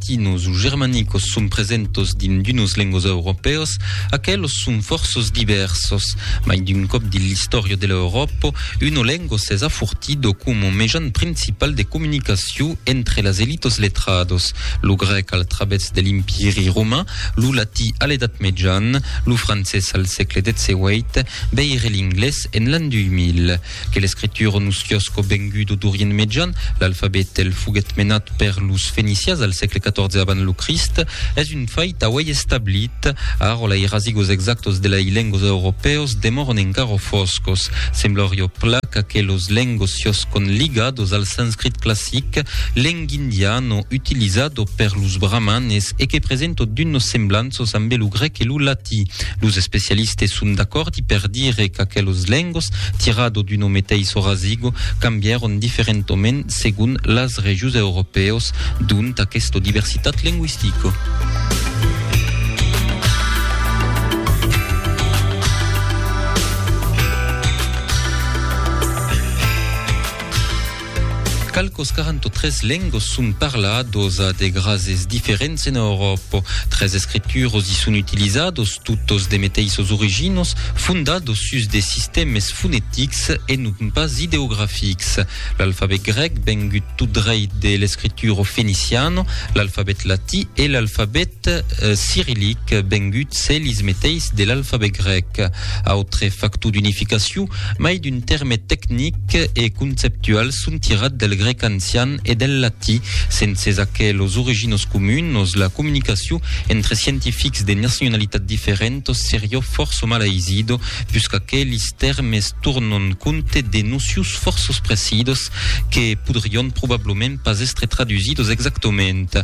latinos o germanicos son presentos dins d'unos lengos europèos, aquelos son fòrços divèrsos. Mai d'un còp dins l'istòria de l'Euròpa, uno lengo s'es afortido coma mejan principal de comunicacion entre las elitos letrados, lo grèc al travèrs de l'Empiri roman, lo latí a l'Edat Mejan, lo francés al sègle 18, veire l'inglés en l'an 2000. Que l'escritura nos fiòsco vengudo d'Orient Mejan, l'alfabet el foguèt menat per los Fenicias al sègle XIV avant lo Crist, es un fait auèi establit. Ara la irazigos exactos de lai lengos europèos demòron encara fòscos. Semblarió plan qu'aquei los lengos fiòscon ligados al sanscrit classic, leng indiano utilizado per los brahmanes e que presento d'unos semblanços ambe lo grèc e lo latí. Los especialistes son d'acòrd. T'i per dire qu'aquelos lengos, tirado d'uno meteiso rasigo, cambièron diferentoment segon las regions europèos d'ont aquesta diversitat lengüistica. Qualques 43 lengos son parlados a de grases diferents en Euròpa. Tres escrituros i son utilizados, totos de meteissos originos, fondados sus de sistèmes fonetics e non pas ideografics. L'alfabet grèc vengut tot dreit de l'escritura feniciana, l'alfabet latí e l'alfabet cirillic vengut selis meteis de l'alfabet grèc. Autre factor d'unificacion, mai d'un tèrme tecnic e conceptual son tirat del grèc ancian e del latí. Senses aquelos originós comunos, la comunicacion entre scientifics de nacionalitat diferentos serió fòrço mal aisido, pus qu'aquelis tèrmes tornon compte de nocius fòrços precidos que podrion probablament pas èstre tradusidos exactament.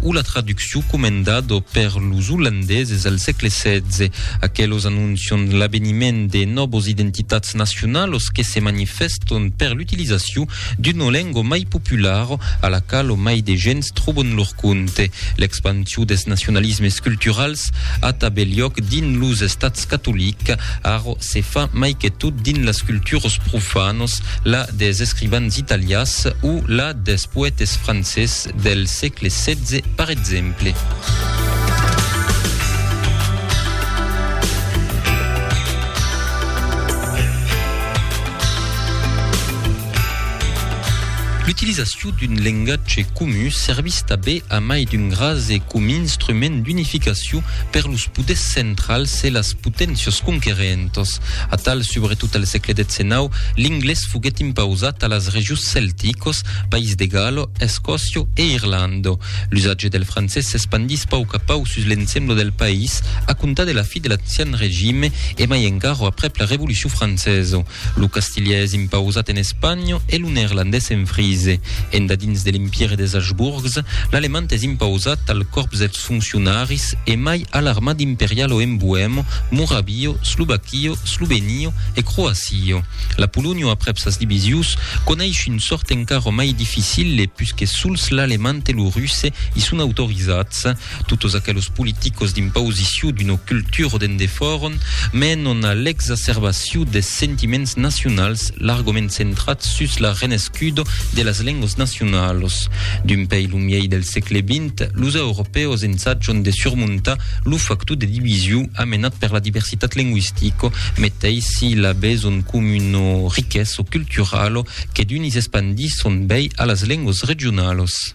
o la traduccion comendada per los olandeses al sègle setze. Aquelos anoncian l'aveniment de nòvas identitats nacionalas que se manifèstan per l'utilizacion d'una lenga mai populara a la quala mai de gents tròban lor compte. L'expansion dels nacionalismes culturals a tanben liòc dins los estats catolics, ara se fa mai que tot dins las culturas profanas, la dels escrivans italians o la dels poètes francés, Art del sègle setze per exemple. L'utilizacion d'un lengatge comu servís tabé a mai d'un ras e com instrument d'unificacion per los poders centrals e las poténcias conquerentas. Atal, subretot al sègle xix, l'inglés foguèt impausat a las regions celticas País de Galo, Escòcio e Irlanda. L'usatge del francés s'espandís pauc a pauc sus l'ensembla del país a comptar de la fi de l'ancian regime e mai encara aprèp la Revolucion francesa. Lo castilhais es impausat en Espanha e lo neerlandés en Frise. Endadins de l'Empire des Habsburgs, l'alemand es impausat al còrps dels Los foncionaris e mai a l'armad imperial o en Boemo, Moravio, Slovakio, Slovenio e Croasio. La Polonio aprèp sas divisius coneish un sort encara mai dificile pus que sols l'alemand e lo russe i son autorizats. Totos aquelos politicos d'impausiciu d'una cultura o d'endefòron menon a l'exacerbaciu des sentiments nacionals largament centrats sus la renescuda de las lengas nacionalas. D'un pei lo miei del sègle xx, D'efèct, los europèus ensajan de surmontar lo factor de division amenat per la diversitat lingüistica, meteis si l'abés un comuna riquesa culturala que d'unis espandisson bèi a las lengas regionalas.